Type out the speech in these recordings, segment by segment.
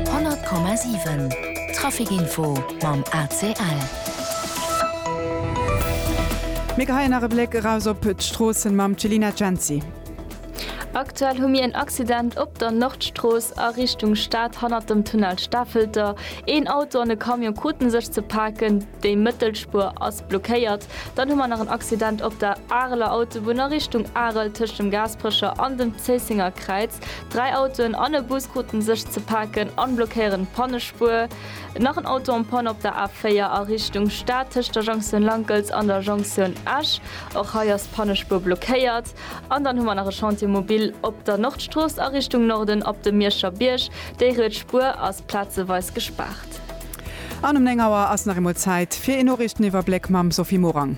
100,7 Trafic Info mam ACL. Mir geheien nach e Bléck eraus op d'Stroossen mam Celina Genzi. Aktuell hu mir en Accident op der Nordstrooss a Richtung Stad hannert dem Tunnel Stafelter. Een Auto an e Camion kruten sech ze paken, déi mëttel Spuer ass blockéiert. Dann hu mer nach en Accident op der Areler Autobunn a Richtung Arel tëscht dem Gaasperecher an dem Zéissenger Kräiz. Dräi Autoen an e Bus kruten sech ze paken an blockéieren d'Pannespuer. Nach en Auto en panne op der A4 a Richtung Stad tëscht der Jonktioun Lankels an der Jonktioun Esch. Och hei ass d'Pannespuer blockéiert. An dann hu mer nach e Chantier mobil op der Nordstrooss a Richtung Norden op dem Mierscher Bierg. Déi riets Spuer ass plazeweis gespaart. An um 9 Auer ass nach eemol Zäit fir een Noriichteniwwerbléck mam Sophie Morang.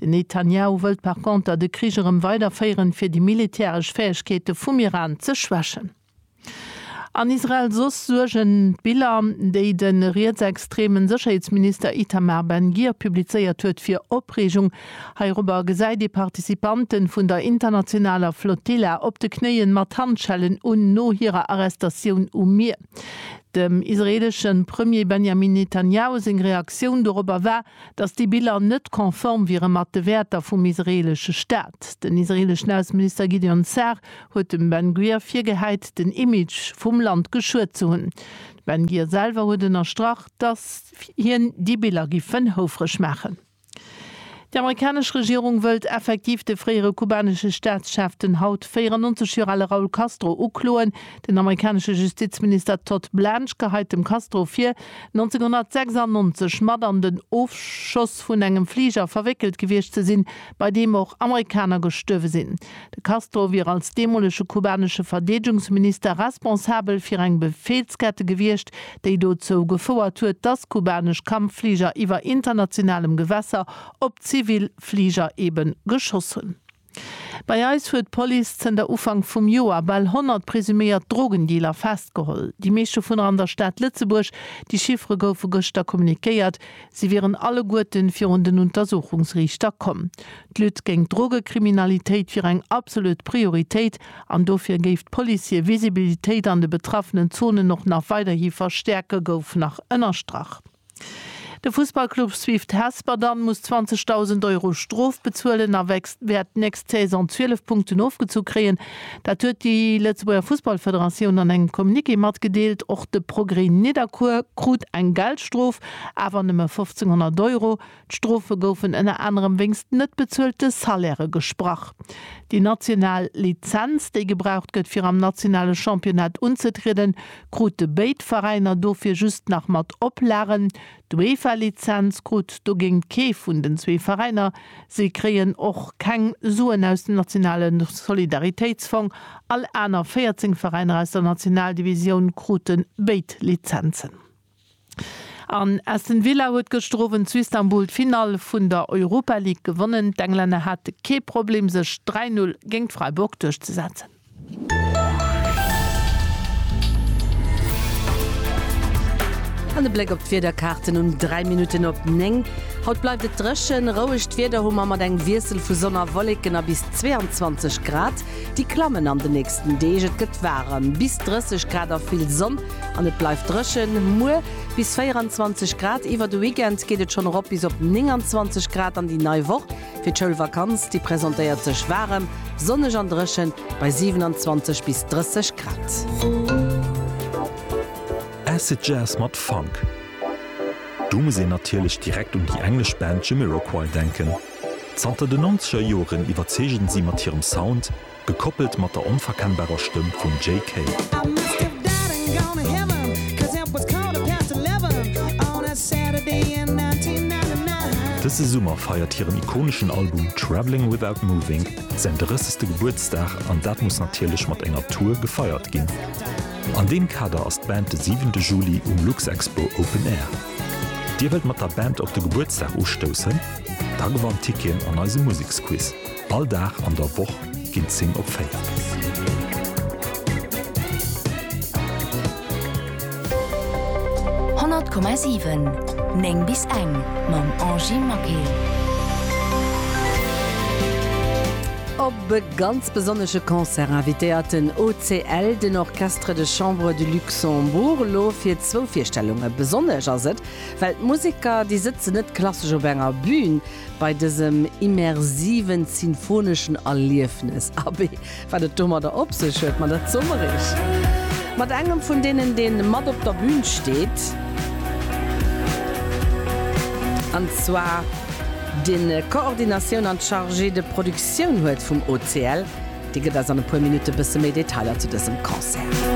Den Netanjahu wëllt par conter de Krich erëm weiderféieren, fir déi militäresch Fäegkeete vum Iran ze schwächen. An Israel soss suergen d'Biller, déi de rietsextremen Sécherheetsminister Itamar Ben-Gir publizéiert huet, fir Opreegung. Heirobber gesäit ee Participanten vun der internationaler Flotilla op de Knéien mat Handschellen un, no hirer Arrestatioun um Mier. Dem israeleschen Premier Benjamin Netanjahu seng Reaktioun dorobber war, datt déi Biller net konform wiere mat de Wäerter vum israeelesche Staat. Den israeeleschen Ausseminister Gideon Sa'ar huet dem Ben Gvir virgehäit, den Image vum Land geschuet ze hunn. De Ben Gvir selwer huet ënnerstrach, datt hien déi Biller giffen houfreg maachen. Déi amerikanesch Regierung wëllt effektiv de fréiere kubanesche Staatschef, den haut 94 Joer ale Raul Castro ukloen. Den amerikanesche Justizminister Todd Blanche geheit dem Castro vir, 1996 mat an den Ofschoss vun engem Fliger verwéckelt gewiescht ze sinn, bei deem och Amerikaner gestuerwe sinn. De Castro wier als deemolege kubanesche Verdeedegungsminister responsabel fir eng Befehlskette gewiescht, déi dozou gefouert huet, dass kubanesch Kampffliger iwwer internationalem Gewässer op zivil Fliger ebe geschoss hunn. Bei eis huet d'Police zënter Ufank vum Joer bal 100 presuméiert Drogendealer festgeholl, déi meescht dovunner an der Stad Lëtzebuerg. Déi Chiffere goufe gëschter kommunikéiert, si wieren alleguerten virun den Untersuchungsriichter komm. D'Lutte géint d'Drogekriminalitéit wier eng absolut Prioritéit an dofir géif d'Police hir Visibilitéit an de betraffenen Zonen och nach weiderhi verstäerken, gouf nach ënnerstrach. De Fussballclub Swift Hesper dann muss 20.000 Euro Strof bezuelen a wäert d'nächst Saison 12 Punkten ofgezu kréien. Dat huet déi Lëtzebuerger Fussballfederatioun an engem Communiqué matgedeelt. Och de Progrès Nidderkuer krut eng Geldstrof, awer nëmme 1.500 Euro. D'Strofe goufen ënner anerem wéinst net bezuelte Salairë gesprach. Déi national Lizenz, déi gebraucht gëtt fir am nationale Championnat unzetrieden, krute béid Veräiner dofir just nach mat Oplagen. D'UEFA-Lizenz krut dogéint kee vun den zwee Veräiner. Si kréien och keng Suen aus dem nationale Solidaritéitsfong. All aner 14 Veräiner aus der Nationaldivisioun krute béid Lizenzen. An Aston Villa huet gëschter Owend zu Istanbul d'Finall vun der Europa League gewonnen. D'Englänner hate kee Problem sech 3 Null géingt Freiburg duerchzesetzen. An e Bléck op d'Wiederkaarten um 3 Minutten op 9. Haut bleift et dréchen, rouegt Wieder hu mer mat engem Wiessel vu Sonn a Wolleken a bis 22 Grad. Déi klammen an de nächsten Deeg, et gëtt waarem, bis 30 Grad a vill Sonn. An et bleift dréchen, muer bis 24 Grad. Iwwer de Weekend geet et schonn erop bis op 29 Grad an déi nei Woch fir d'Schoulvakanz, déi presentéiert sech waarem, sonneg an dréchen bei 27 bis 30 Grad. Acid Jazz mat Funk, do muss een natierlech direkt un déi englesch Band Jamiroquai denken. Zanter den Nonzeger Joren iwwerzeegen si mat hirem Sound, Gekoppelt mat der onverkennbarer Stëmm vum JK. Dëse Summer feiert hiren ikoneschen Album Travelling Without Moving säin drëssegste Gebuertsdag an dat muss natierlech mat enger Tour gefeiert ginn. An deem Kader ass d'Band de siwente Juli um Luxexpo Open Air. Dir wëllt mat der Band op de Gebuertsdag ustoussen? Da gewannt Tickien an eise Museksquiz. All Dag an der Woch ginn 10 op 4. Honnert Komma siwen, Néng bis eng mam Angie Maquet. Op e ganz besonnesche Concert invitéiert den OCL den Orchestre de Chambre du Luxembourg elo fir zwou Virstellunge. Besonnesch ass et, well d'Museker, déi sëtzen net klassesch op enger Bün, Bei dësem immersiven sinfoneschen Erliefnes, abee, wat et domadder op sech huet, ma dat soe mer iech mat engem vun deenen, dee mat op der Bün steet, an zwar dee Koordinatioun an d'Chargée de production huet vum OCL. Dee gëtt eis an e puer Minutte bësse méi Detailer zu dësem Concert.